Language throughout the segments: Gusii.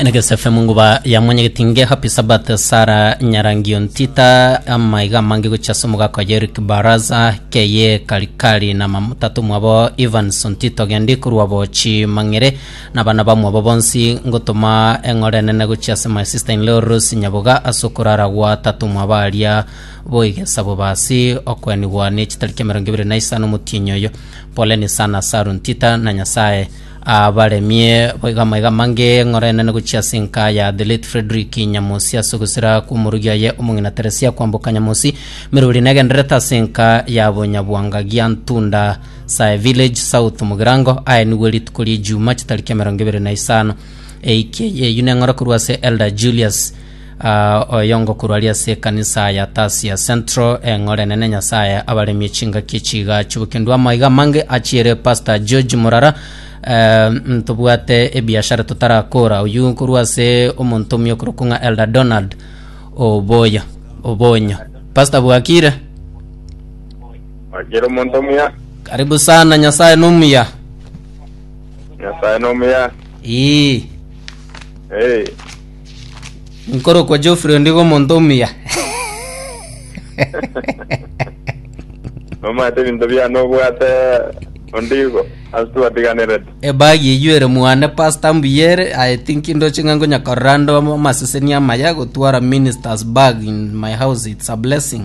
Negeso FM nguba ya mwenyegeti nge Happy Sabbath Sara Nyarangio Ntita amaiga amange gochia ase omogaka oye Eric Baraza keye Karikari na mamutatu mwabo Evans Ntito gendi korwa bochi mang'ere na abana bamwabo bonsi ngotoma eng'ore enene gochia ase my sister in law Rose Nyaboga ase okorara gwa tatu mwabo aria boigesa bobasi okwenigwa ne chitari kia emerongo ebere na isano omotienyi oyo poleni sana Saru Ntita na Nyasaye Abaremie boigo amaiga amange ng'orenene gochia ase enka ya The Late Frederick Nyamosi ase ogusira kw'omorugi oye omong'ina Teresia kwamboka Nyamosi meruri negendererete ase enka ya Bonyabwanga gia Ntunda Sae Village South Mogirango. Aye nigwe rituko ri'Ejumaa chitariki emerongo ebere na isano eiki eye. Eyio neng'ora korwa ase Elder Julius Aa, oyo ngokurwa aria ase ekanisa ya Tasia Central, eng'ore enene Nyasaye abaremie chingaki echiga chibukindu. Amaiga amange achiere Pastor George Murara, eh, ntobwate ebiashara totarakora. Oyio nkorwa ase omonto omiokorokwo ng'a Elder Donald Oboya, Obonyo. Pastor bwakire? Wakira omonto omuya, Karibu sana, Nyasaye nomuya. Nyasaye nomuya. Ii. Hey. Nkorokwa Geoffrey ondiga omonto omuya. Omanyete ebinto biane obwate ondigo ase twatiganerete. Ebagi eyio ere mwane pastor mbuya ere I think ndoche ng'a nkonyakorera ande ama- amaseseni amaya gotwara ministers bag in my house it's a blessing.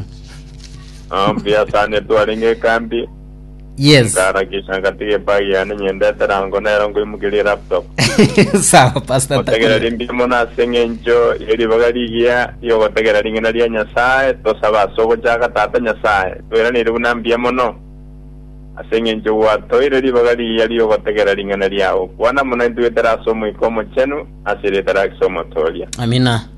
Ah, mbuya sana twarenge ekambi Yes. Ngarakisha ngatiga ebag yane nyendete rango nero ngoimokeria elaptop. Sawa Pastor Otegera Tania. rimbia mono ase eng'encho ye ribaga rigiya riogotegera ring'ina ria Nyasae, tosaba ase ogochaka Tata Nyasae. Toiraneire buna mbuya mono ase eng'encho gwatoeire ribaga rigiya riogotegera ring'ana riao. Kwana mono intwe goetera ase Omoika Omochenu ase erieta ria Kristo Omotooria. Amina.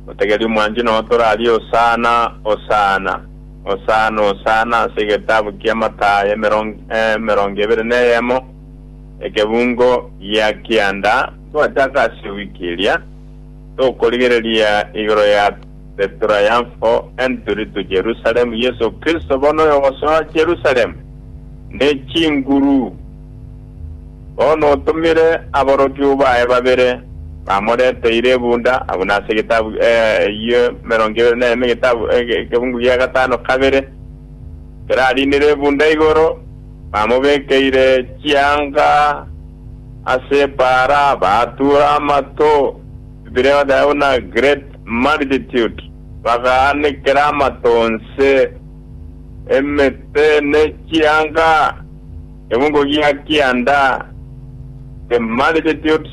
Otegeri omwanchwa notorarie Hosana, Hosana. Hosana, Hosana ase egetabu kia Mathayo emerongo ebere neyemo, ekebungo gia kianda. Twachaka ase ewiki eria, tokorigereria igoro ya The Triumphal Entry to Jerusalem, Yeso Kristo bono oyogosoa Jerusalem ne chinguru. Bono otomire aborokigwa baye babere, bamoreteire ebunda, abwo nase egetabu eyio emerongo ebere na eme, egetabu ekegungu gia gatano kabere, kerariinire ebunda igoro, bamobekeire chianga ase epaara, batuura amato, bire bateba buna Great Multitude, bagaanekera amato onse. Emete ne chianga, egungu gia kianda, the multitudes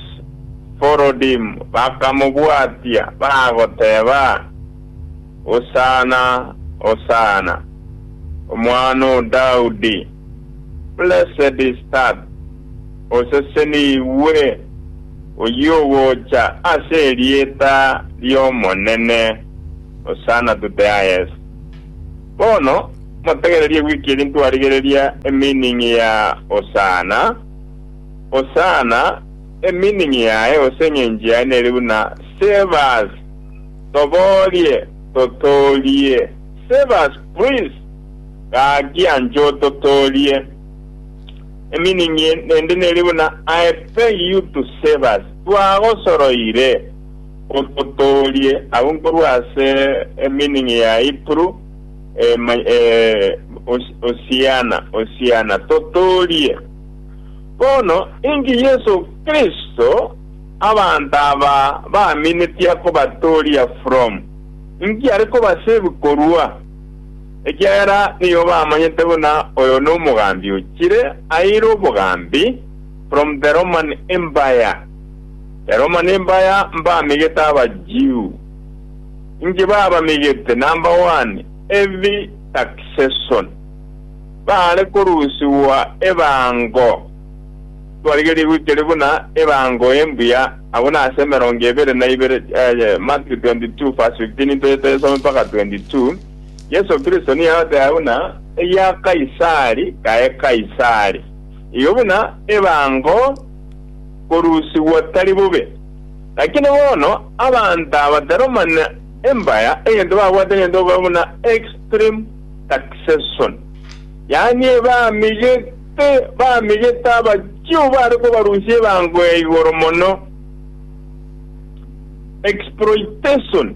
followed him, bakamobwatia, bagoteba, Hosanna, Hosanna, Omwana o Daudi, Blessed is that, Osesenigwe oyio ogocha ase erieta ri'Omonene, Hosanna to the highest. Bono motegererie wiki eri ntwarigereria emeaning ya Hosanna. Hosanna, emeaning yaye gose eng'encho yaye nere buna Save us, Toborie, Totoorie, Save us please, Gaakia nche ototoorie. Emeaning ende nere buna I beg you to save us, Twagosoroire. Ototoorie agwo nkorwa ase emeaning ya Hebrew, Hosiana, Hosiana, totoorie. Bono inki Yeso Kristo abanto aba baminetie kobatooria from? Inki are kobasave korwa? Ekiagera nigo bamanyete buna oyo nomogambi ochire aire obogambi from the Roman Empire. Ero mani mbaya mbamegete Abajiu, inki babamegete number one heavy taxation, baare korusigwa ebango, twarigerie goikeria buna ebango embuya, abwo nase emerongo ebere na ibere, Mat. 22:15 into yetayesome mpaka 22, Yeso Kristo nigo agoteba buna egia Kaisari kae Kaisari, igo buna ebango, korusigwa tari bobe. Lakini bono abanto aba taromana embaya, egento babwate nigento okoba buna extreme taxation, yaani ebamigete bamigete abachio bare kobarusia ebango ya igoro mono. Exploitation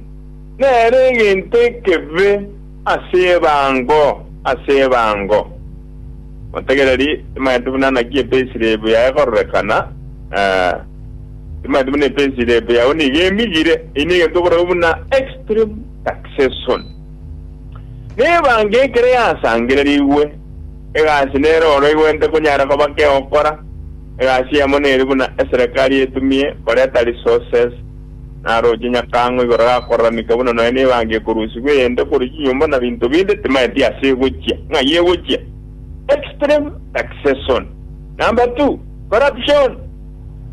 nere egento ekebe. Ase ebango, ase ebango. Motegereri, timanyeti buna naki epesi ria ebu yaye ekororekana, ee, timanyeti buna epesi ria ebu yao nigo emigire. Eyio negento okoragwa buna extreme succession. Na ebango ekero yasangererigwe, egasi nero oro egwente konyara koba kegokora, egasi yamo neri buna eserekari etumie koreta resources Narooche nyakang'o igoro gakoraranigwa buna nonya nebangi ekorusigwa eyende korwa chinyomba na binto binde timaeti ase egochia, ng'ai egochia? Extreme succession. Number two, corruption.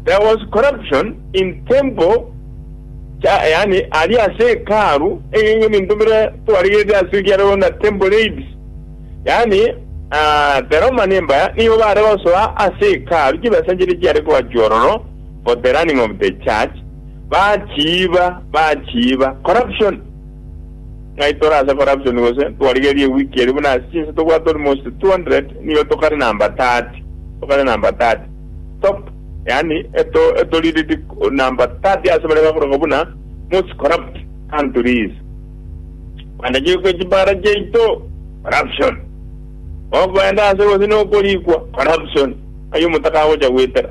There was corruption in temple cha yaani aria ase hekalu egenga ebinto bire twarigerete ase kiareo na temple raids. Yaani ah, the Roman Empire nigo bare gosoa ase hekalu chibesa chire chiare kogachwa ororo for the running of the church, bachiiba, bachiiba, corruption! Ng'ai tore ase corruption gose? Twarigeria ewiki eria buna ase chinsa tobwate almost 200, nigo tokare number 30, tokare number 30, top, yaani eto, eto leaded number 30 ase baria bakoroka buna most corrupt countries. Kwandegeirwe kwe chibara chiaito, corruption! Okoenda ase gose nokorikwa, corruption! Ng'ai omotaka agocha goetera?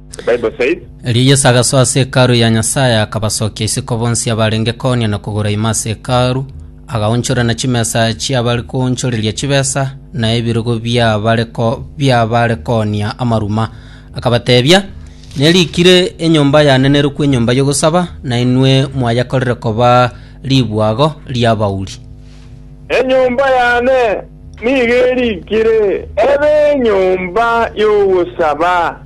Erio Yeso agasoa ase Hekalu ya Nyasae, akabasokia isiko bonsi abarenge koonia na kogoro ime ase Hekalu, agaonchora na chimesa chi'abare koonchoreria chibesa, na ebirogo bi'abare ko- bi'abare koonia amaruma. Akabateebia, Nerikire, Enyomba yanenerokwa enyomba y'ogosaba, na inwe mwayekorire koba ribwago ri'abauri. Enyomba yane nigo erikire ebe enyomba y'ogosaba.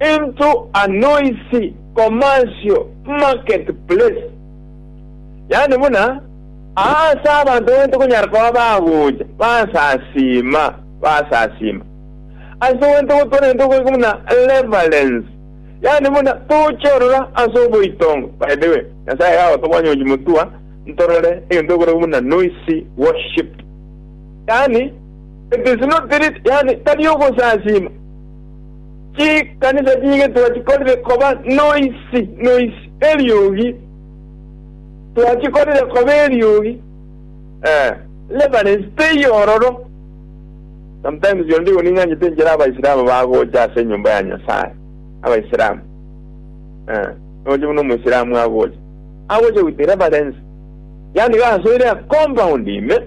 into a noisy commercial market place, yaani buna aa ase abanto baito konyara koba bagocha basasiima basasiima, ase gento gotwara gento goika buna reverence, yaani buna toche orora ase oboitongo, by the way, Nyasaye iga agotobonya ochi motua ntorore egento ekorokwa buna noisy worship, yaani it is not lit, yaani tari ogosasiima. Chikanisa chi'egetuba chikorire koba noisi noisi eriogi, twachikorire koba eriogi, ee, reference teiyo ororo. Sometimes onde igo ning'anyete inchera Abaisilamu bagocha ase enyomba ya Nyasae, Abaisilamu, ee, noche buna Omoisilamu agocha, agocha with reference, yaani iga asoire a compound ime,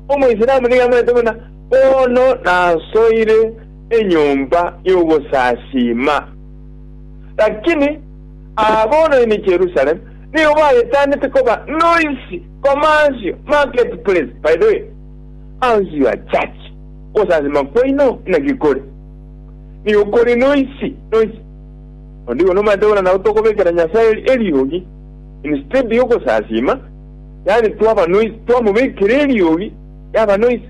Omoisilamu nigo amanyete buna bono nasoire. enyomba y'ogosasiima. Lakini aa bono ime Jerusalem nigo bayetanete koba noisy, commercial, market place. By the way, how's your church? Ogosasiima kwaino naki kore? Nigo kore noisy, noisy. Onde igo nomaete buna nabo tokobekera Nyasae eriogi instead y'ogosasiima, yaani twaba noisy, twamobekera eriogi yaba noisy.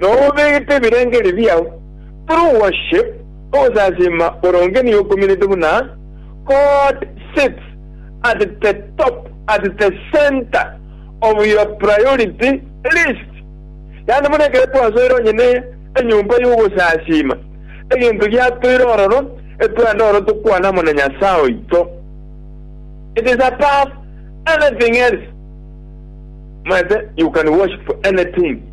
Nonya obegete ebirengerio biao through worship, ogosasiima boronge nigo okuminete buna God sits at the top, at the centre of your priority list. Yaani buna ekero twasoire onye ne enyomba y'ogosasiima, egento giatoire ororo, etwende ororo tokwane amo na Nyasae oito. It is above anything else. Omanyete, you can worship anything.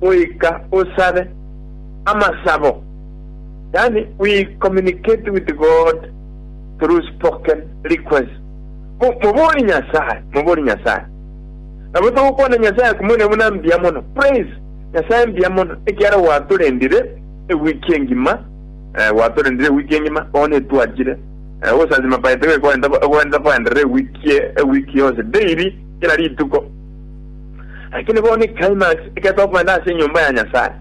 goika osabe amasabo, yaani we communicate with God through spoken requests. Mo, mobori Nyasaye, mobori Nyasaye. Nabo togokwana Nyasaye akomoine buna mbuya mono. Praise Nyasaye mbuya mono ekiara gwatorendire ewiki engima, eh, gwatorendire ewiki engima, bono etwachire. Eh, obosasima paete goika ogende, ogende koenderera ewiki, ewiki yonsi, daily, kera rituko. Lakini bono eclimax eketwa kogenda ase enyomba ya Nyasaye.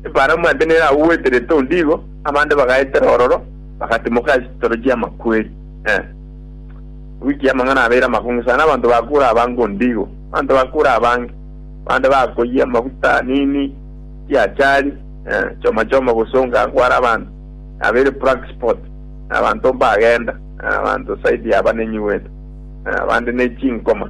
Ebalamu ande nere agwo gweterete onde igo, abande bagaetera ororo, bagatimoka ase chitoro chi'amakweri. Eh. Ewiki y'amang'ana abeire amakong'u sana, abanto bakuure abange onde igo. Abanto bakuure abange. Abande bakoyia amaguta, nini, chiachari, eh, choma choma gosonga agwo are abanto. Yabeire black spot. Eh, abanto mbagenda. Eh, abanto side y'abanenyi gwetu. Eh, abande ne chinkoma.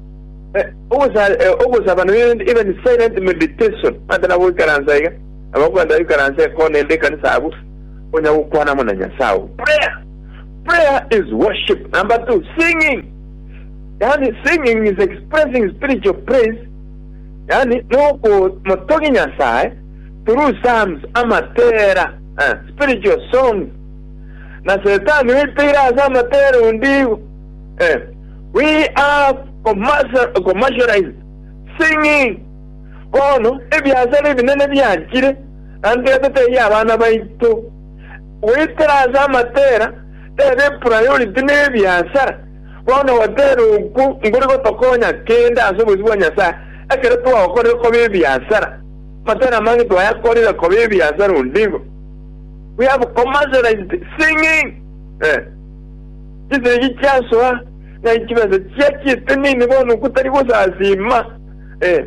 Ogosabana n'erinde ibe ne silent meditation, mante na goikaransa iga, nabo okwenda goikaransa ekona ende ekanisa abwo, onya gokwana amo na Nyasae oo. Prayer, prayer is worship. Number two, singing, yaani singing is expressing spiritual praise, yaani nogokomotogia Nyasae through psalms, amatera, spiritual songs. Na Setani oiteire ase amatera onde igo. Eh, we have commercial- commercialized singing. Bono ebiasara ebinene biachire, na ntwete teiyo abana baito. Goetera ase amatera, tebe epriority nebiasara. Bono gotera okwo nkori gotokonya kende ase obosio bwa Nyasae, ekero twagokorire koba ebiasara. Amatera amange twayakorire koba ebiasara onde igo. We have commercialized singing. Eh. Chisegi chiasoa, na inchimesa chia chistenene, bono gotari gosasiima, ee,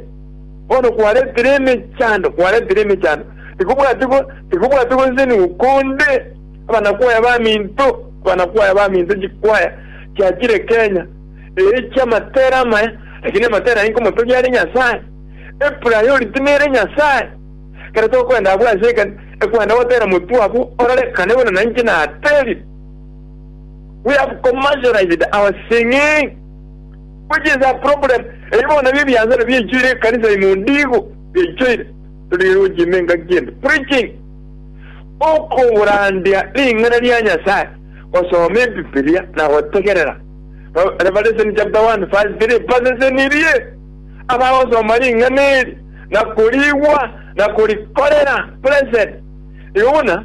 bono kwaretire emechando, kwaretire emechando, tikobwati go, tikobwati gosesenigwa konde, abanakwaya baminto, abanakwaya baminto, chikwaya chia chirekenya, ee, chi'amatera amaya, lakini amatera aye nkomotogia are Nyasae, epriority nere Nyasae. Ekero tokoenda abwo ase ekani, ekwenda gotera motwe abwo orarekane buna nainche naterire. We have commercialized our singing which is a problem. Ebi bono nabio ebiansano biaichoire ekanisa ime ondigo biaichoire. Torigere gochia ime engaki ende. Preaching, okoburandia ring'ana ria Nyasae, gosoma Ebibilia na gotegerera. Re- Revelation chapter 1 verse 3 basesenirie abagosoma ring'ana eri na korigwa na korikorera. Blessed. Igo buna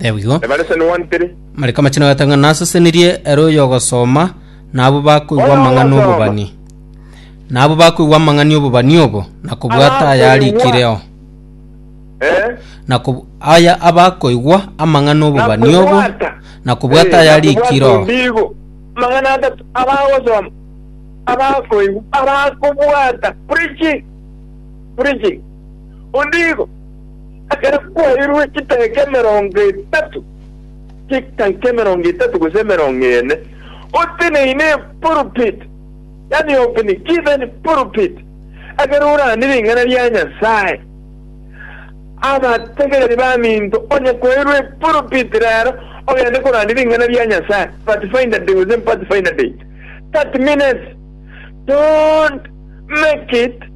Ebigo. Ebare sene one three. Mariko amachenu agatanga nasesenirie ere oyogosoma na abo bakoigwa Oyo amang'ana ogosoma. obobani na abo bakoigwa amang'ani obobani obo na kobwata Abakoigwa. ayarikireo Eh? na kob- aya abakoigwa amang'ana obobani obo Nakobwata. na kobwata Eh, nakobwata ayarikireo ondigo. Amang'ana atatu abagosoma abakoigwa abakobwata preaching preaching ondigo Ekero kwairwe chidakika emerongo etato, chidakika emerongo etato gose emerongo ene, oteneine epulpit, yaani open given pulpit, ekero orande ring'ana ria Nyasae, abategereri baminto onye kwairwe epulpit rero ogende korandia ring'ana ria Nyasae, Pathfinder Day gose Pathfinder Date, 30 minutes, don't make it.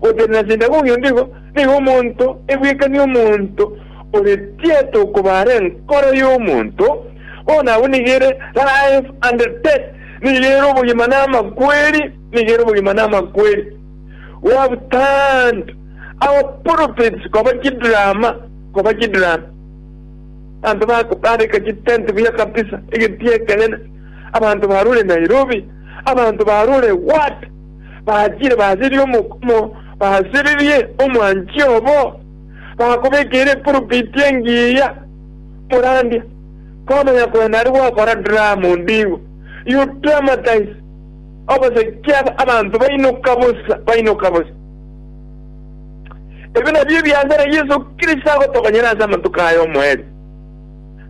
Gotenena na ase endagera oyonde igo, nigo omonto ebwekanie omonto ore tieta okobara enkoro y'omonto, bono abwo nigo ere life and death, nigo ere obogima na amakweri, nigo ere obogima na amakweri. We have turned our pulpits koba chidrama, koba chidrama. Abanto bako bareka chitent buya kabisa, egetie ekenene, abanto barure Nairobi, abanto barure what? bachire baserie omokumo, basererie omwanchi obo, bakobekeire epurupiti engiya morandia, komanya korende aria gwakora dramu ndigo you dramatize obosegi aba abanto bainoka bosa, bainoka bosa. Ebi nabio ebiasare Yesu Kristo agotokonyera ase amatuko aya omoerio.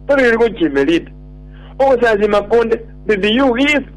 Toririgwe chimeriti, ogosasima konde did you give?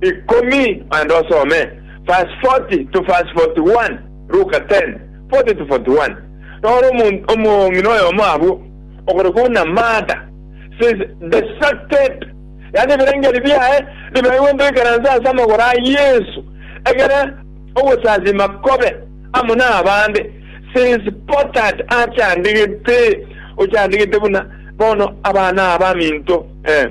ikomi naende osome verse 40 to verse 41, Luka 10, 40 to 41. Noro omonto omong'ina oyomo abwo, ogorekwa buna Martha, says the sucked, yaani ebirengeri biaye bibaigwe ntoikeransa ase amagoro a Yesu, egere ogosasima kobe amo nabande, says pottered, achandigete, ochandigete buna bono abana abaminto, eh.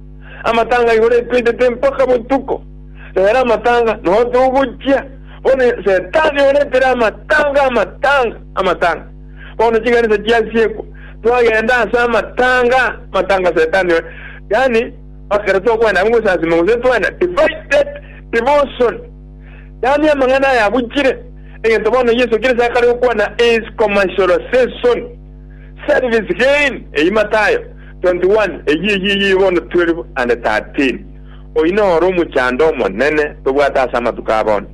Amatanga igoro etweitete mpaka botuko, nere amatanga nao togochia. Bono Setani oretere amatanga, amatanga, amatanga. Bono chikanisa chiasiekwa, twagenda ase amatanga, amatanga Setani ore. Yaani, ekero tokwenda abwo gosasima gose twena, divided devotion. Yaani amang'ana aya abuchire, egento bono Yeso Kristo akare okwana is commercialization. Service Gain eyio Mathayo 21 eyio eyio eyio bono 12 and 13 Oyio noro omochando omonene tobwate ase amatuko a bono,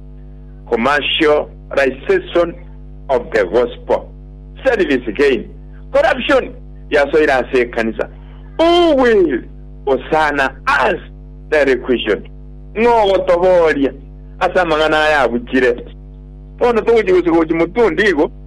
commercialization of the gospel. Service Gain Corruption yasoire ase ekanisa Who will Hosanna us Daily Question Ng'o ogotobooria ase amang'ana aya abuchire? Bono togochia gosuka gochia motundi igo.